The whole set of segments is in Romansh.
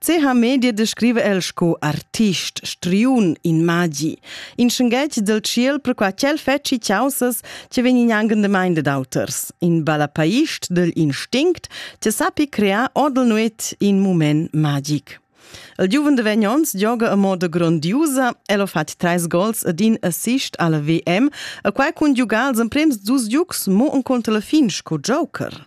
CH Media descriva el sco artist, striun, in magi, in schenghetg del tschiel perquai ch'el fetschi caussas che vegnin angendamain dad auters, in balapaist degl instinct che sappi crear odel nuet in mument magic. Il giuven de vegn ons gioga a moda grondiusa, el ha fatg treis gols ed in assist alla VM, a quai cun giugar als emprems dus giugs mo encunter la fin sco joker.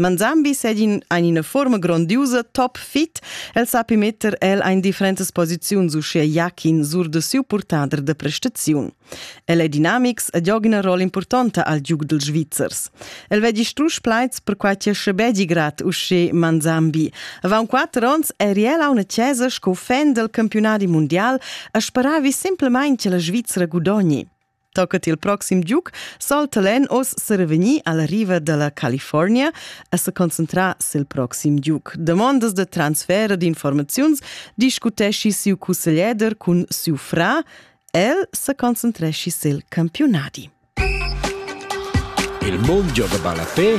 Manzambi segin ein ina forma grondiusa top fit. El sapi metter el ein differentas posiziuns uschia Jakin sur de siu purtader de prestaziun. El ei dinamics ed gioga ina rolla impurtonta al giug dils Svizzers. El veggi strusch plaids per quai che schebegi grad usche Manzambi. Avant quatter onns eri el a una chiesa sco fan del campionadi mondial e speravi semplamain che la Svizzera gudogni. Tocat il proxim giug salta l'en oz serevegnir alla riva dalla California e se concentrar sil proxim giug. Demandas de transfer d'informaziuns discutesci siu cusseglieder cun siu fra. El se concentresci sil campionadi. Il mondo de Balapé,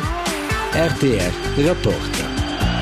RTR Reporter.